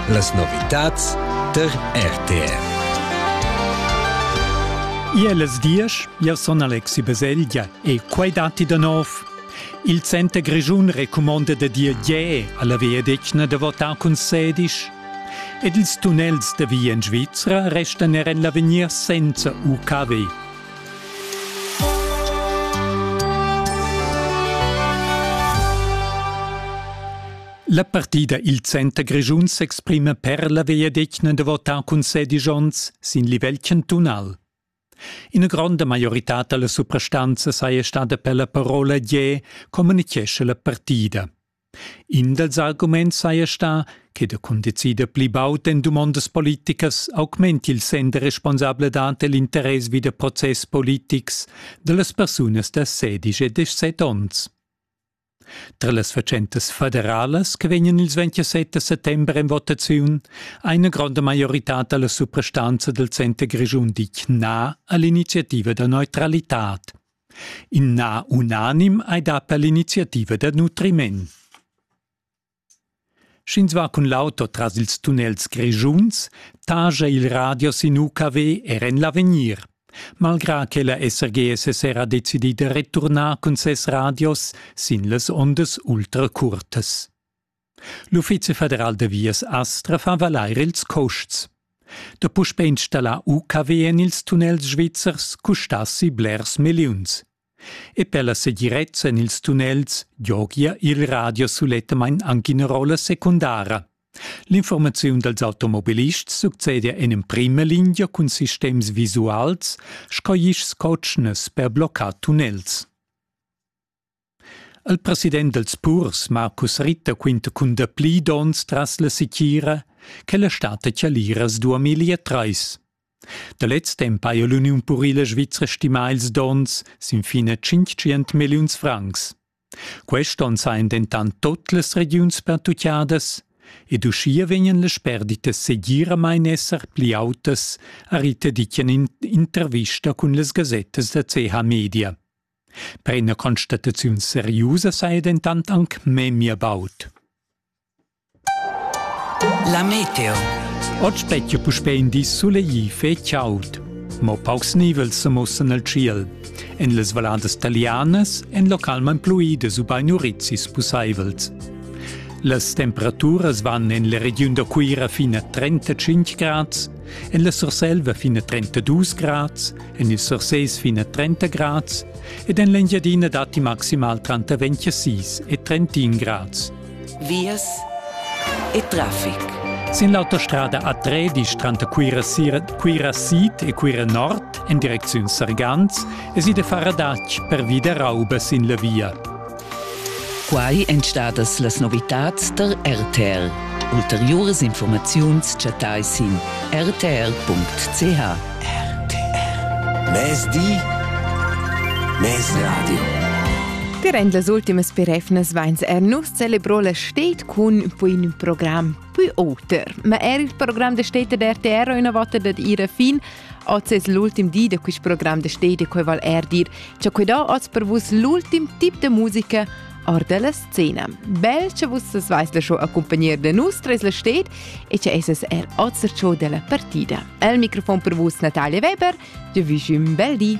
Las novitads tar RTR. Ier las diesch, jau sun Alexi Baselgia e quai datti da nov. Il Center Grischun recumonda da dir je a la viadetgna da votar cun sedisch. Ed ils tunnels da via en Svizra restan er en l'avegnir senza UKW. La partida il Center Grischun s'exprima per la vegliadetgna da votar cun sedisch onns sin livel cantunal. Ina gronda maioritad dalla suprastanza saja stada per la parola Gie, communichescha la partida. In dals arguments saja stà che da cundecider pli baud en dumondas politicas augmenti il senn da responsabladad e l'interess vi da process politics da las persunas da sedici e dezesset onns. Tra las fatschentas federalas che vegnan ils 27 settember en votaziun ha ina gronda maioritad da la suprastanza dal center grischun ditg na a l'iniziativa da neutralitad. In na unanim ei da per l'iniziativa da nutriment. Sch'ins va cun l'auto tras ils tunnels grischuns, taja il radio sin UKW er en l'avegnir. Malgrà che la SRGSS era decidì da returnar cun ses radios sin las ondas ultra curtas. L'Uffizi federal da vias Astra fa valair ils custs. Da puspè installar UKW en ils tunnels svizzers custassi blers milliuns. E per la segirezza en ils tunnels giogia il radio sulettamain anche una rolla secundara. L'informaziun dals automobilists succede en emprima linea cun sistems visuals sco isch cotschnas per bloccar tunnels. Il president dels purs, Marcus Ritter, quinta cun dapli dons tras la sitgira che la stata Chaliras 2003. Da lez temp haja l'Uniun purila svizra stimà ils dons sin fin a 500 milliuns francs. Quest onn sajan dentant tot las regiuns pertuccadas ed uschia vegnan las perditas segiramain esser pli autas, ha Ritter ditg en intervista cun las gasettas da CH Media. Per ina constataziun seriusa saja dentant anc memia baud. La meteo. Oggi spettia puspè in di sulegl e chaud. Mo paucs nivels sa mussan al tschiel. En las valladas talianas èn localmain pluidas ubain urizis pussaivels. Las temperaturas van en la regiun da Cuira fin a 35 grads, en la Surselva fin a 32 grads en il Surseis fin a 30 grads ed en l'Engiadina datti maximal tranter 26 e 31 grads. Vias e traffic. Sin l'autostrada A3, disch tranter Cuira, Cuira Sid e Cuira Nord en direcziun Sargans, es i de far adatg per vida rauba sin la via. Quai èn stadas las novitads da RTR. Ulteriuras informaziuns chattai sin rtr.ch. RTR. Mezdi. Mezradio. Dirend las ultimas perefnas vains er nus celebrò la stet cun pun program pui oter. Ma er il program da stet da RTR ha üna vota dad ira fin Oz es l'ultim di da quist program da Stedi quai vall eir dir cha quai do oz per vus l'ultim tip da musica or dalla scena. Bel che vus as vais la show accompagnar da nus tres la sted e che esas er oz der show della partida. El microfon per vus Natalia Weber, jo vi un bel di.